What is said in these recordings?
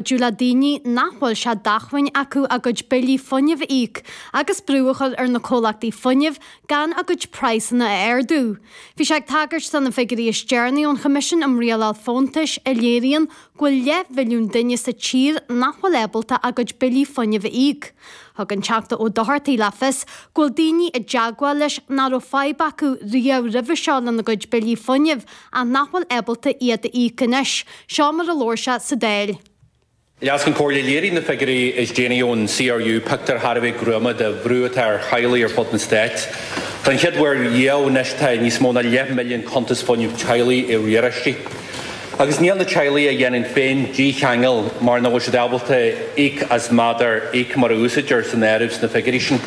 cuidiú le daoine nach bhfuil sé d'acmhainn acu a gcuid billí fuinnimh a íoc agus brú a chur ar na comhlachtaí fuinnimh gan a gcuid praghsanna a ardú. Bhí sé ag tagairt do na figiúirí is deireanaí ón Choimisiún um Rialáil Fóntais a léiríonn go bhfuil leathmhilliún duine sa tír nach bhfuil ábalta a gcuid billí fuinnimh a íoc. Thug an Teachta Ó Dochartaí le fios go bhfuil daoine i dteagmháil leis nach raibh fadhb acu riamh roimhe seo lena gcuid billí fuinnimh ach nach bhfuil ábalta iad a íoc anois. Seo mar a labhair sé sa Dáil. Leas-Cheann Comhairle, léirigh na figiúirí is déanaí ón CRU pictiúr thar a bheith gruama de bhrú atá ar theaghlaigh ar fud an Stáit. Don chéad uair riamh anois tá níos mó ná leath milliún cuntas fuinnimh teaghlaigh i riaráistí. Agus níl na teaghlaigh a dhéanann féin dícheangal mar nach bhfuil siad ábalta íoc as méadar íoc mar a úsáidtear san áireamh sna figiúirí sin.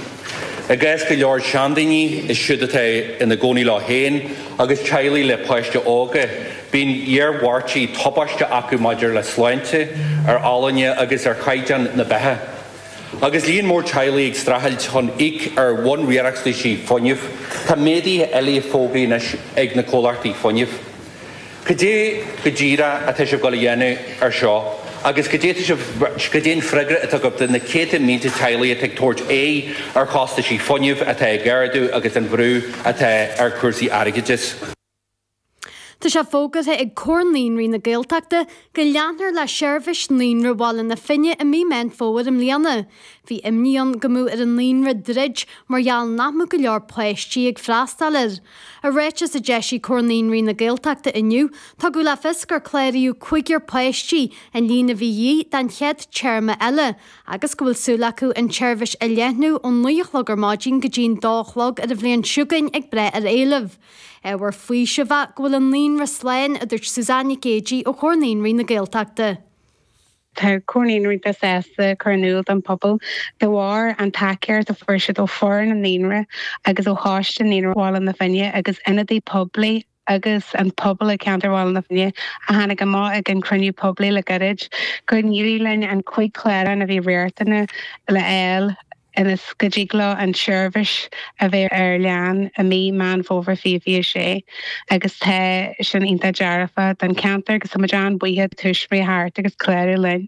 I gcás go leor seandaoine, is siúd atá ina gcónaí leo féin, agus teaghlaigh le páistí óga, bíonn iarmhairtí tubaisteacha maidir le sláinte, ar fholláine agus ar chaighdeán na beatha, agus líon mór teaghlaigh ag streachailt chun íoc ar bhunriachtanaisí fuinnimh. Tá méaduithe eile fógraithe anois ag na comhlachtaí fuinnimh. Cad é go díreach atá sibh ag goil a dhéanamh ar seo? agus cad é, cad é an freagra atá agaibh do na céadta mílte teaghlaigh atá ag tabhairt aghaidh ar chostaisí fuinnimh atá ag ardú agus an bhrú atá ar chúrsaí airgeadais. Tá sé fógartha ag Comhar Naíonraí na Gaeltachta go leanfar le seirbhís Naíonra Bhaile na Finne i mí Meán Fómhair i mbliana. Bhí imní ann go mbeadh ar an naíonra druid mar gheall nach mbeadh go leor páistí ag freastáil air. I ráiteas a d'eisigh Comhar Naíonraí na Gaeltachta inniu, tugadh le fios gur cláraíodh cúigear páistí, an líon a bhí de dhíth don chéad téarma eile, agus go bhfuil súil acu an tseirbhís a leathnú ón naoi a chlog ar maidin go dtí'n dó a chlog ar an bhliain seo chugainn ag brath ar éileamh. Ábhar faoisimh é go bhfuil an naíonra slán, a dúirt Suzanne Nic Géidigh ó Chomhar Naíonraí na Gaeltachta. Tá Comhar Naíonraí iontach sásta cur in iúl don phobal, de bharr an tacaíocht a fuair siad ó foireann an naíonra agus ó choiste Naíonra Bhaile na Finne agus ionadaí poiblí agus an pobal ag ceantar Bhaile na Finne a tháinig amach ag an cruinniú poiblí le gairid, gur n-éirigh linn an chúig clárán a bhí riachtanach le fháil. Ionas go dtig leo an tseirbhís a bheith ar lean i mí Meán Fómhair 2026 agus tá sin iontach dearfa don cheantar agus táimid an-bhuíoch do thuismitheoirí as clárú linn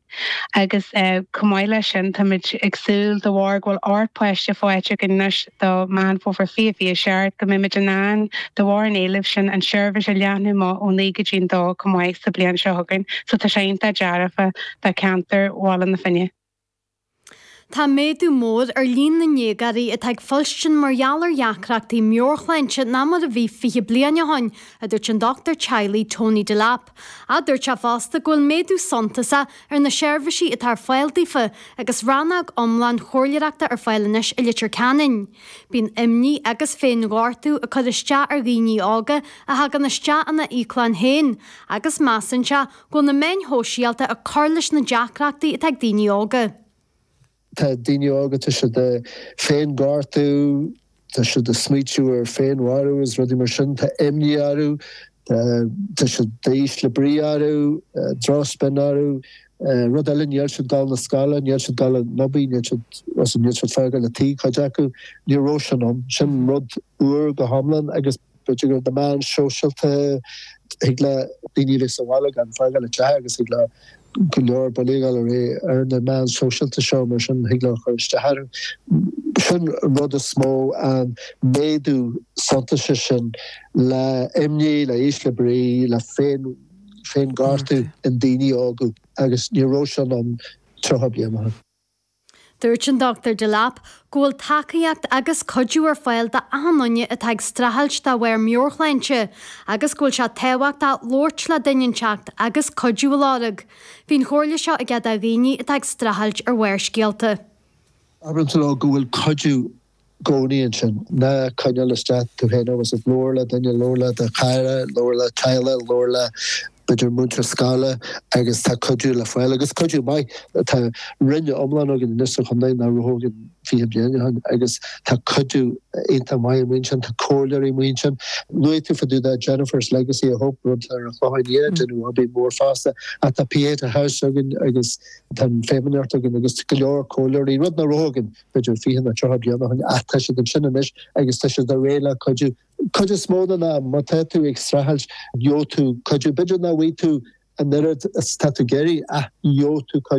agus chomh maith leis sin táimid ag súil de bharr go bhfuil ocht páiste faighte againn anois do Mheán Fómhair 2027 go mbeimid in ann de bharr an éilimh sin an tseirbhís a leathnú amach ón 9 go dtí an 2 chomh maith sa bhliain seo chugainn so tá sé iontach dearfa do cheantar Bhaile na Finne. Tá méadú mór ar líon na ndéagóirí atá ag fuilstin mar gheall ar dheacrachtaí meabhairshláinte ná mar a bhí fiche bliain ó shin, a dúirt an dochtúir teaghlaigh Tony Delap. Adúirt sé fosta go bhfuil méadú suntasach ar na seirbhísí atá ar fáil daofa agus rannóg iomlán chomhairleoireachta ar fáil anois i Leitir Ceanainn. Bíonn imní agus féinghortú ag cur isteach ar dhaoine óga a thagann isteach ina íoclann féin agus measann sé Go bhfuil na meáin shóisialta ag cur leis na deacrachtaí atá ag daoine óga. Tá daoine óga, tá siad ag féin-ghortú, tá siad ag smaoitiú ar féin-mharú agus rudaí mar sin. Tá imní orthu, tá siad ísle brí orthu, drochspion orthu. Rud eile, níl siad ag dul na scoile, níl siad ag dul an obair, níl siad, bhuel, níl siad ag fágáil an tí, cuid acu. Ní raibh sin ann. Sin rud úr go hiomlán agus. B'fhéidir gur na meáin shóisialta, thig le daoine a bheith sa bhaile gan fágáil a dtithe agus thig le go leor bulaíocht gabháil ar aghaidh ar na meáin shóisialta seo, mar sin thig leo a chur isteach orthu. Sin an rud is mó, an méadú suntasach sin le imní, le ísle brí, le féin, féin-ghortú i ndaoine óga agus ní raibh sin ann tríocha bliain ó shin. Dúirt an Dr Delap go bhfuil tacaíocht agus cuidiú ar fáil d'achan duine atá ag streachailt de bharr meabhairshláinte agus go bhfuil sé tábhachtach labhairt le duine inteacht agus cuidiú a lorg. Bhí an chomhairle seo aige do dhaoine atá ag streachailt ar Bharrscéalta. Abair leo go bhfuil cuidiú gcónaí ansin. Ná coinneáil isteach tú féin agus labhair le duine, labhair le do chara, labhair le teaghlach, labhair le b'fhéidir múinteoir scoile agus tá cuidiú le fáil, agus cuidiú maith. Tá roinn iomlán againn anois sa chontae nach raibh againn fiche bliain ó shin agus tá cuidiú iontach maith amuigh ansin, tá comhairleoirí amuigh ansin. Luaigh tú fá dtaobh de Jennifer's Legacy of Hope, rud ar an Chlocháin Liath, déanamh obair mór fosta, ach tá Pieta House againn agus tá an Feidhmeannacht againn agus go leor comhairleoirí, rud nach raibh againn. b'fhéidir fiche nó tríocha bliain ó shin, ach tá siad ansin anois agus tá siad réidh le cuidiú. Cuid is mó den am, má tá tú ag streachailt, gheobhaidh tú cuidiú. B'fhéidir nach bhfaighidh tú an oiread is atá tú ag iarraidh, ach gheobhaidh tú cuidiú.